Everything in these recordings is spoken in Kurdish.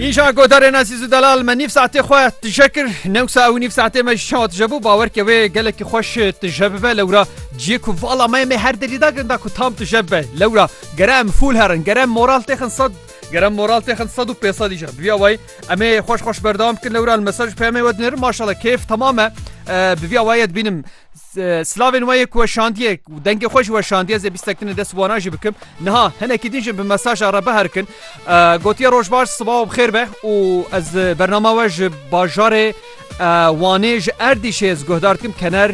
Îşa godarên Ezîz û Delal me nîv saetê xwe tije kir newsa ew nîv saetê me ji çawa tije bû bawer ke wê gelekî xweş tije bibe lewra ciyê ku vala me me her delî da girinda ku tam tije bibe lewra gere em fûl herin gere em moral têxin sed gere moral têxin sed û pê sed îşa bi vîya wayî em ê xweş xweş berdewam bikin lewra li mesaj peyamê we dinêrim maşala kêf temam e bi vîya wayî dibînim Slavên we yê ku weşandiye û dengê xwe jî weşandiye zê bîstek tune dest wanan jî bikim. Niha hinekî din jî bi mesaja re biherkin. Gotiye roj baş siba û bixêr be û ez bernama we ji bajarê Wanê ji Erdîşê ez guhdar dikim kener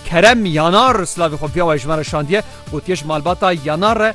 kerem yanar slavê xwe piya we ji me re şandiye gotiye ji malbata yanar re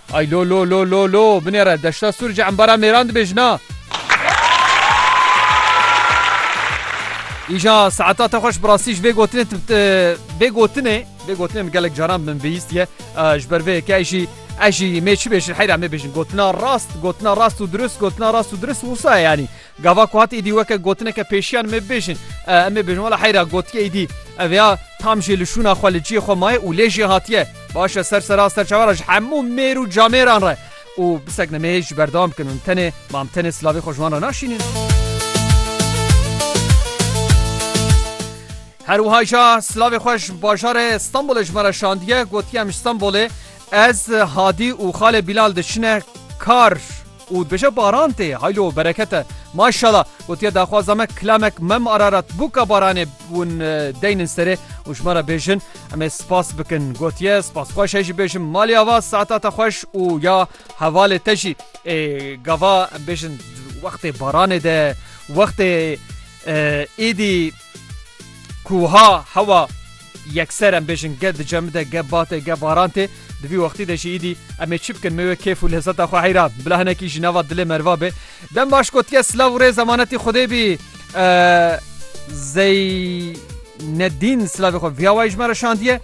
Ay lo lo lo lo lo binêre deşta sur ji embara mêran dibê jina. Îja saeta te xweş bi rastî ji vê gotinê vê gotinê vê gotinê min gelek caran min bihîstiye ji ber vê yekê jî ez jî mê çi bêjin heyra mê bêjin gotina rast gotina rast û dirust gotina rast û dirust wisa yanî Gava ku hat îdî weke gotineke pêşiyan me bêjin. Em ê bêjin wala heyra gotiye îdî. Ev ya tam jê li şûna xwe li ciyê xwe maye û lê jê hatiye. Baş e ser sera ser çavara ji hemû mêr û camêran re û bisek ne mêr ji berdewam bikin hûn tenê mam tenê silavê xwe ji wan re naşînin. Her wiha jî silavê xwe ji bajarê Stenbolê ji me re şandiye gotiye em ji Stenbolê ez Hadî û xalê Bîlal diçine kar. Û dibêje baran tê haylo bereket e. Maşala gotiye daxwaza me kilamek mem ararat bû ka baranê ûn deynin serê û ji me re bêjin em ê spas bikin. Gotiye spas xweş e jî bêjim malê ava saeta te xweş û ya hevalê te jî. Ê gava em bêjin wextê baranê de wextê êdî ku wiha hewa. Yekser em bêjin ge dice min de, ge bat e, ge baran tê. Di vî wextî de jî îdî em ê çi bikin? Mê wê kêf û lezeta xwe heyra bila hinekî jî nava dilê merva bê. Dem baş gotiye silav û rêz emanetî Xwedê bî. Zeynedîn silavê xwe viya wayî ji me re şandiye.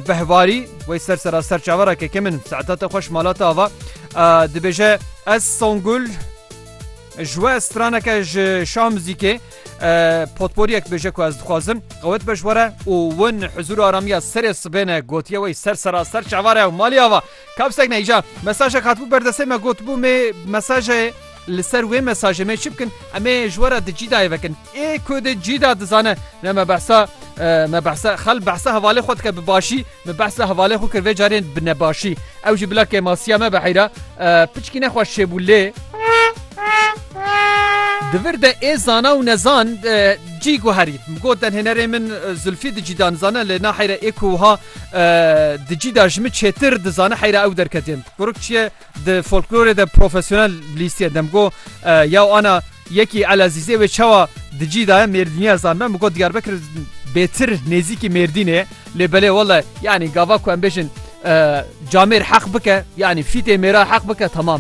Behvarî wey ser sera ser çavera keke min seetata xweş malata ava dibêje ez Songul ji we straneke ji şah muzîkê Potporiyek bêje ku ez dixwazim qewet be ji were û win hizûr aramiya serê sibêne gotiye wey ser seraster çavare ew malî ava kapsek ne îca mesajek hatbû berdesê me gotbû mê mesajê li ser wê mesajê mê çi bikin em ê ji were di cîdayê vekin ê ku di cîda dizane ne me behsa me behsa xel behsa hevalê xwe dike bi başî Min behsa hevalê xwe kir vê carê bi nebaşî. Ew jî bila kêmasiya me be heyra piçkîne xwe şêbû lê. Di vir de ê zana û nezan cî guherî. Got denhênerê min Zulfî di cî de nizane lê na heyra ê ku wiha di cî de ji min çêtir dizane heyra ew derketê. Kuruk çiye Di folklorê de profesyonel lîstiye demgo ya ana yekî Elezîzê wê çawa di cî daye mêrdîniya zanben bi got Diyarbekir bêtir nêzîkî mêrdînê lê belê wele yanî gava ku em bêjin camêr heq bike yanî fîtê mêra heq bike tamam.